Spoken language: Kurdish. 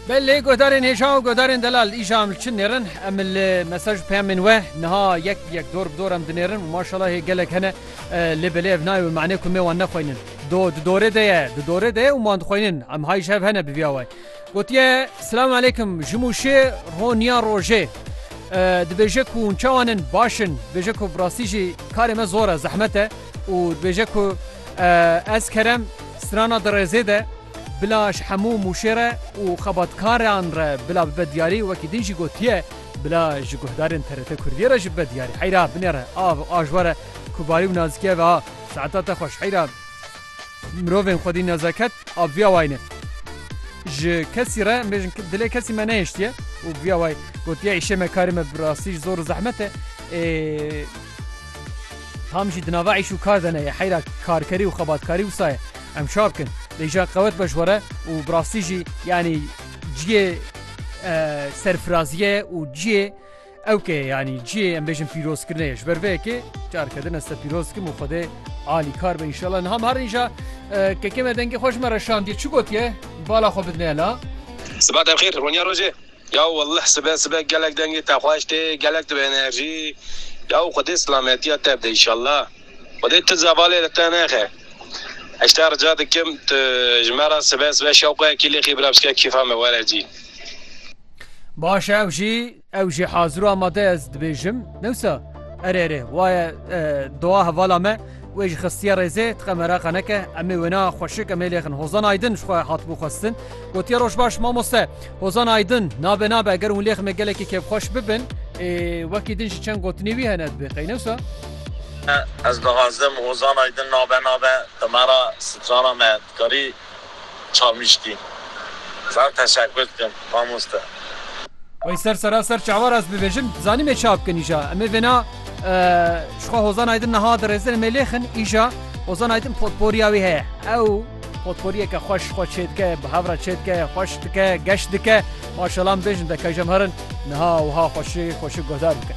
Belê guhdarên hêja û guhdarên delal îşa em li çi nêrin? Em li mesaj peyamên we niha yek bi yek dor bi dor em dinêrin û maşala hê gelek hene lê belê ev nayê wê manê ku me wan nexweynin. Do di dorê de ye, di dorê de ye û man dixweynin. Em hay ji hev hene bi vîya wayî. Gotiye, Silam aleykum, ji Mûşê ro niya rojê. Dibêje ku hûn çawan in? Baş in. Dibêje ku bi rastî jî karê me zor e, zehmet e. û dibêje ku ez kerem strana di rêzê de bila ji hemû mûşê re û xebatkaran re bila bibe diyarî wekî din jî gotiye bila ji guhdarên TRT Kurdiyê re jî bibe diyarî heyra binêre av û a ji were ku barî û nazîkiya ve a saeta te xweş heyra mirovên xwedî nezaket a bi vîya wayî ne ji kesî re em bêjin dilê kesî me nehiştiye û bi vîya wayî gotiye îşê me karê me bi rastî ji zor û zehmet e ê Tam jî di nava îş û kar de ne yê heyra karkerî û xebatkarî wisa ye. Em şa bikin. Lê jî ya qewet be ji we re û bi rastî jî yanî ciyê serfiraziyê û ciyê ewkê ye yanî ciyê em bêjin pîrozkirine ye. Ji ber vê yekê careke din ez te pîroz dikim û Xwedê alî kar be înşallah. Niha mi herin îja kekê me dengê xwe ji me re şandiye. Çi gotiye? Bala xwe bidine la. Sibat em xêr, roniya rojê. Yaw welleh sibe sibe gelek dengê te xweş tê gelek tu bi enerjî yaw xwedê silametiya te bide îşallah xwedê tu zevalê li te nexe heşta rica dikim tu ji me re sibe sibe şewqeyekî lêxî bira bişke kêfa me were cî. Baş e ew jî ew jî hazir û amade ye ez dibêjim newsa erê erê waye dowa hevala me. Wê jî xistiye rêzê, Tiqe mereqa neke, em ê wêna xweşik em ê lêxin. Hozan Aydin ji xwe hatibû xwestin. Gotiye Roj baş mamoste. Hozan Aydin, Nabe nabe eger hûn lêximê gelekî kêfxweş bibin. Ê wekî din jî çend gotinê wî hene dibe qeynewsa. Ez dixwazim Hozan Aydin nabe nabe di me re strana me. Dikarî Çavmiştî. Zaf teşekkür dikim mamoste. Wey ser sera ser çavar ez bivejim zanime ça bikin îja em ê vêna jixwe Hozan Aydin niha dirêzin em ê lêxin îja Hozan Aydin potporiya wî heye ew potporiyeke xweş xwe çêdike bi hev re çêdike xweş dike geş dike maşallah em bêjin de kejemherin niha wiha xweşi xweşi guhdar bikin.